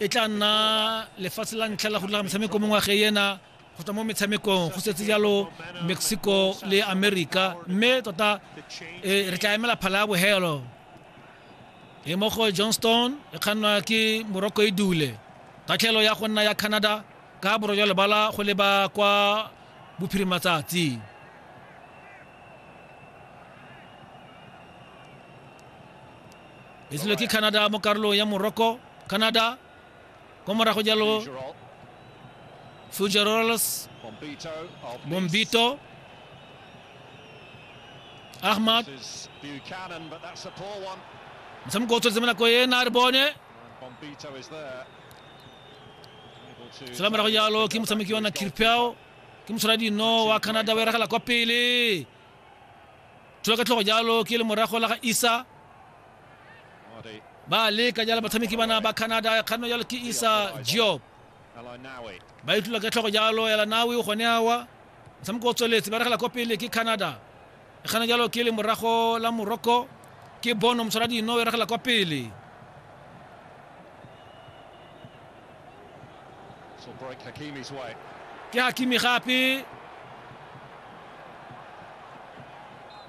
e tla nna lefatshe la ntlha la go dira metshameko mo ngwageng ena go tswa mo metshamekong go setse jalo mexico le america mme tota e, re tla emela phala ya bogelo e mo go johnston e kgannwa ke morocco e dule tatlhelo ya go nna ya canada ka boro jwa lebala go leba kwa bophirimatsatsi e ke canada mo karolong ya morocco Canada kwa morago jalo Fugeroles Bombito Ahmad motshameko o tshwanetse mo nako ena a re bone sela morago jalo ke motshameki wa na kirpeo ke motshwara dino wa canada wa eragela kwa pele thula ka tlhogo jalo ke le morago la ga isa ba leka jalo batshameki bana ba canada kganno jalo ke isa job ba itlula ka tlhogo jalo ya lanawi gone awa motshameko o tsweletse ba regela kwa pele ke canada e kgana jalo ke le morago la morocco ke bono motshwara dino e regela kwa pele ke hakimi gape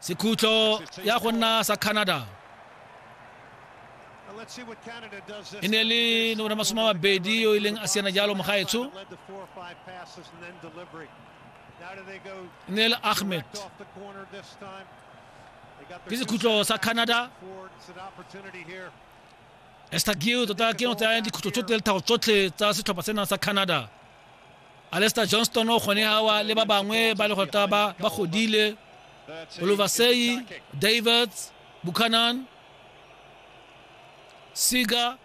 sekhutlo ya go nna sa canada e ne le nomoro masome a mabedi yo e leng a siana jalo mogaetsho e ne le ahmed ke sekhutlo sa canada estagiu tota ke no tsaya dikhutlo tsotlhe le thago tsotlhe tsa setlhopha sena sa canada alester johnston gone awa le ba bangwe ba le gota ba ba godile oluvasei davids buchanan siga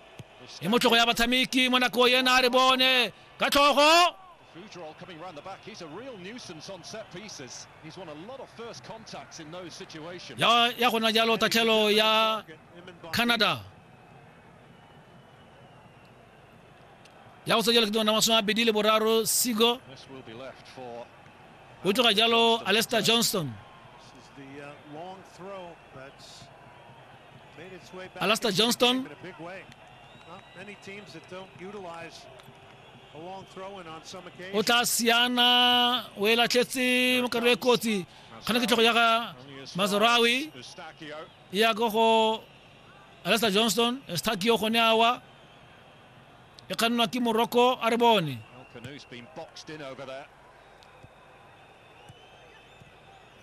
e mo tlhogo ya batshameki mo nako yena a re bone ka tlhogo Futrol coming around the back. He's a real nuisance on set pieces. He's won a lot of first contacts in those situations. ya ya gona jalo tatlhelo ya canada ya go tsejela ketengwana masome a bedi le boraro sigo o tloga jalo alester johnston alester johnston o tla siana o e latlhetse mo karo e kotsi kgana ke tlhogo ya ga mazarawi ya go go alesa johnston stakio gone awa e kgannwa ke morocco a re bone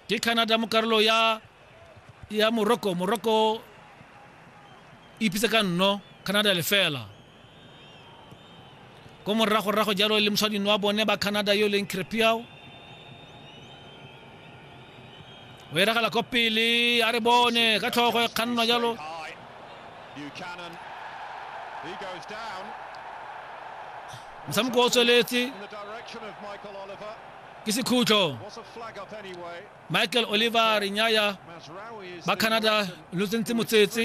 ke canada mo karolo ya ya morocco morocco e ipitse ka nno canada lefela ko moragorago jalo le moshwadino wa bone ba canada yo e leng crepiao o eragela ko pele a re bone ka tlhogo e kgannwa jalo motshameko o tsweletse ke sekhutlo michael oliver renyaya ba canada lo tsentse motsetse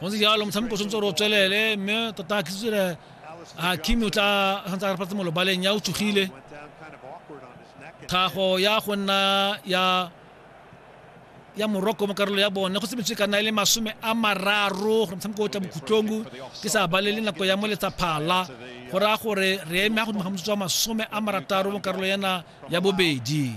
go ntse jalo motshameko tshwanetse gore o tswelele mme tota ke tsere a kimi o tla santse a re patse molobaleng ya o tsogile tlhago ya go nna ya ya morocco mo karolo ya bone go sebetse ka nna e le masome a mararo gore motshameko o tla bokhutlong ke sa balele nako ya mo letsaphala go raya gore re eme ya godimo ga motsotso wa masome a marataro mo karolo yana ya bobedi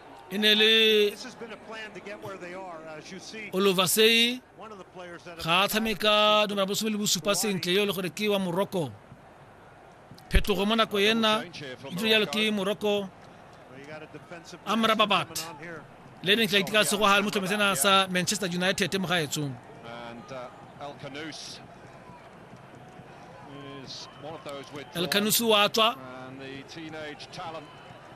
e ne le olofasei ga a tshameka nomera bosome le bosupa sentle yo e le gore ke wa morocco phetogo mo nako ena e dilo jalo ke morocco amrababat le neng tlaiti ka segoga le motlhomi sena sa manchester united mo gaetsong elkanusu wa tswa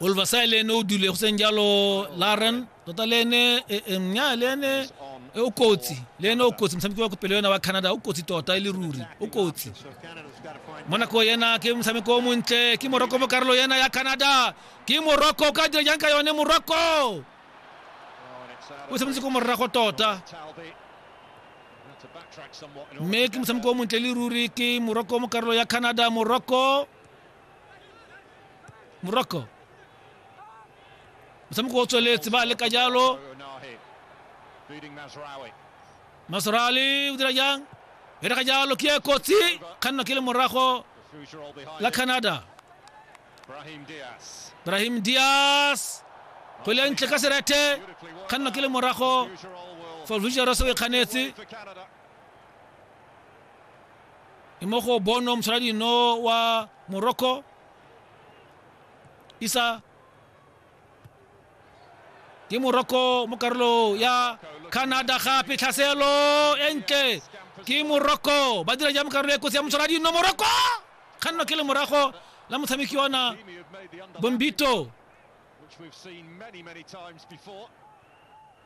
Olvasai le ene o dule go seng jalo Laren tota le ene e, e, nya le ene e, o kotsi le ene o kotsi motshameko wa kopelo yona wa Canada o kotsi tota e le ruri o kotsi mo nako yena ke motshameko o montle ke Morocco mo karolo yena ya Canada ke Morocco ka dira jang ka yone Morocco o tshwanetse ko morago tota mme ke motshameko o montle le ruri ke Morocco mo karolo ya Canada Morocco morocco motshameko o tsweletse ba leka jalo masrali o dira jang e rega jalo ke e kotsi kganna ke le morago la canada brahim dias kgwele ntle ka serete kganna ke le morago for future se o e kganetse e mo go bono mosaladino wa morocco isa ke morocco mo karolo ya canada gape tlhaselo e ntle ke morocco ba dira jang karolo e kotsi ya mosaladino morocco kganno ke le morago la motshameki ona bombito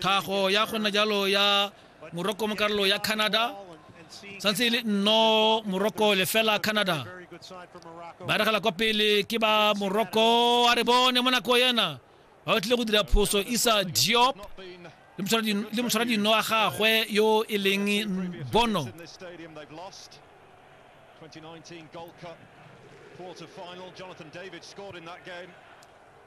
tlhago ya gona jalo ya moroko mo karolo ya canada santse e le nno moroko lefela canada ba regela kwa pele ke ba moroko a re bone mo nako ena ba batlile go dira phoso isa diop le motshwara dino a gagwe yo e leng bono quarter final. Jonathan David scored in that game.